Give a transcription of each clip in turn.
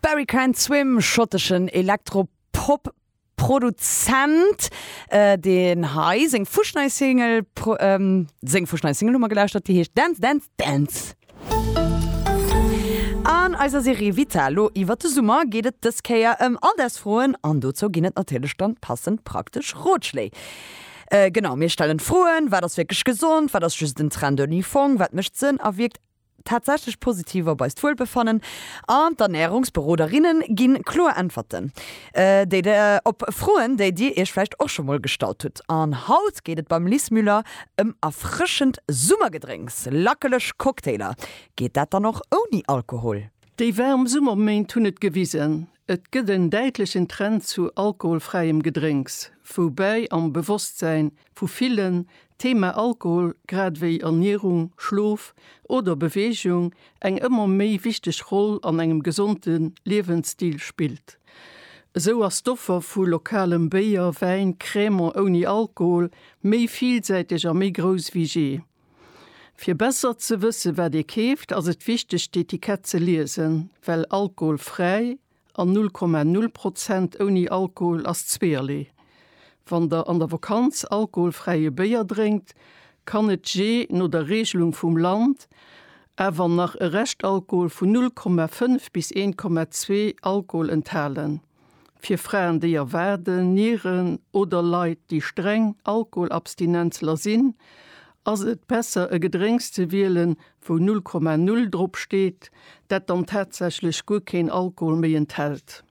Barry Can't Swim, schotteschen Elektro-Pop-Produzent, deen hei seng fuschnei Single pro, seng fuschnei Single hu mer gelauschtert, déi heescht Dance, Dance, Dance. An eiser Serie Vital lo iwwert de Summer geet et dës Kéier ëm Alldagsfroen an dozou ginn et natierlech dann passend praktesch Rotschléi. Genau, mir stellen d'Froen, Wat ass wierklech gesond? Wat ass just en Trend ouni Fong? Wat mécht Sënn a wierkt? tatsächlech positiv op eist Wuelbefannen an d'Ernärungsberoderinnen ginn kloer Äntwerten déi der op Froen déi dir iech vläicht och scho mol gestallt hutt. An haut geet et beim Liz Müller ëm erfrëschend Summergedrénks, lackeleg Cocktailer. Geet dat dann och ouni Alkohol? Déi waarm Summerméint hunn et gewisen, et gëtt en däitlechen Trend zu alkoholfräiem Gedrénks, woubäi am Bewosstsäin vu villen, d'Thema Alkohol grad ewéi Ernierung, Schlof oder Beweegung eng ëmmer méi wichteg Roll an engem gesonde Liewensstil spillt. Esou ass d'Offer vu lokalem Béier, Wäin, Cremant ouni Alkohol méi villsäiteg a méi grouss ewéi je. Fir besser ze wësse wat ee keeft, ass et wichteg d'Etikett ze liesen, well alkoholfräi, An 0,0 Prozent ouni Alkohol ass zweeërlee. Wann der an der Vakanz alkoholfräie Béier drénkt, kann et jee no der Reegelung vum Land awer nach e Reschtalkohol vun 0,5 bis 1,2 Alkohol enthalen. Fir Fraen, déi erwaarden, Nieren oder Leit, déi streng Alkoholabstinenzler sinn, ass et besser e Gedrénks ze wielen, wou 0,0 drop steet, dat dann tatsächlech guer keen Alkohol méi enthält.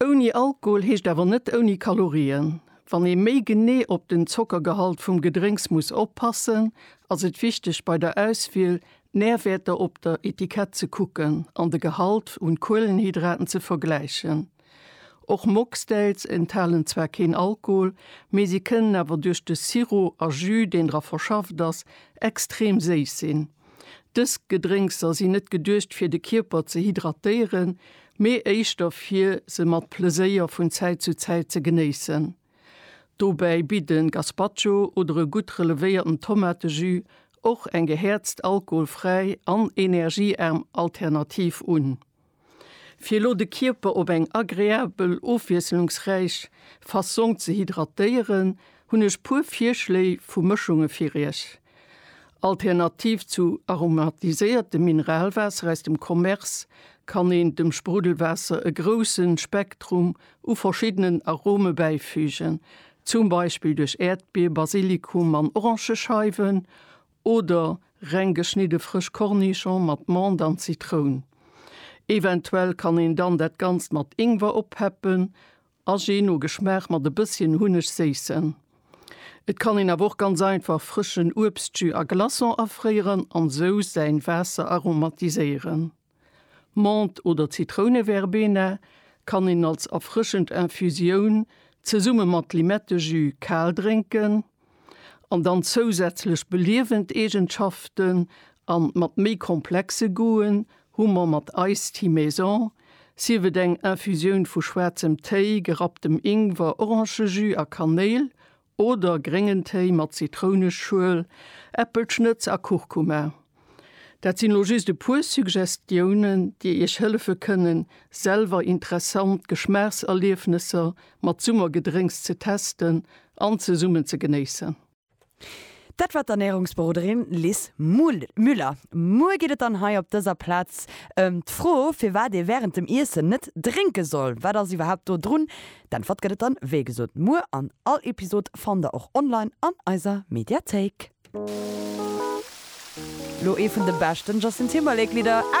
Ouni Alkohol heescht awer net ouni Kalorien. Wann ee méi genee op den Zockergehalt vum Gedrénks muss oppassen, ass et wichteg bei der Auswiel d'Närwäerter op der Etikett ze kucken an de Gehalt un Kuelenhydraten ze vergläichen. Och Mocktails enthalen zwar keen Alkohol, mee si kënnen awer duerch de Sirop a Jus, deen dra verschafft ass, extrem séiss sinn. Dës Gedrénkser sinn net geduecht fir de Kierper ze hydratéieren, mee éischter fir se mat Pleséier vun Zäit zu Zäit ze genéissen. Dobäi bitt e Gazpacho oder e gutt relevéierten Tomatejus och eng gehäerzt, alkoholfräi an energieaarm Alternativ un. Fir elo de Kierper op eng agreabel, ofwiesselungsräich Fassong ze hydratéieren, hunn ech puer Virschléi vu Mëschunge fir iech. Alternativ zu aromatiséiertem Mineralwaasser aus dem Commerce kann een dem Spruddelwaasser e grousse Spektrum u verschiddenen Arome bäifügen, zum Beispill duerch Äerdbier, Basilikum an Orangescheiwen Oder reng geschnidde frësch Cornichon mat Mond an Zitroun. Eventuell kann een dann dat Ganzt mat Ingwer oppeppen a je no Geschmaach mat e bësschen Hunneg séissen. Et kann een awer och ganz einfach frëschen Uebstjus a Glaçon afréieren an sou säin Waasser aromatiséieren. D'Mant oder Zitrouneverbena kann een als erfrëschend Infusioun zesumme mat Limettejus kal drénken an dann zousätzlech beliewend Eegenschaften an mat méi komplexe Goûten hu mer mat Iced Tea Maison, sief et eng Infusioun vu schwaarzem Téi, gerapptem Ingwer, Orangejus a Kanéil Oder gréngen Téi mat Zitrounenschuel, Äppelschnëtz a Kurkuma. Dat sinn elo just e puer Suggestiounen, déi Iech hëllefe kënnen, selwer interessant Geschmaachserliefnesser mat Summergedrénks ze testen an zesummen ze genéissen. Dat war d'Ernärungsberoderin Lis Müller. Muer geet et dann hei op dëser Plaz ëm d'Fro, firwat ee wärend dem Iessen net drénke soll. Wat ass iwwerhaapt do drun? D'Äntwert gëtt et dann wéi gesot muer an all Episod fannt der och online an eiser Mediathéik. Lo ee vun de beschten Justin Timberlake Lidder ever!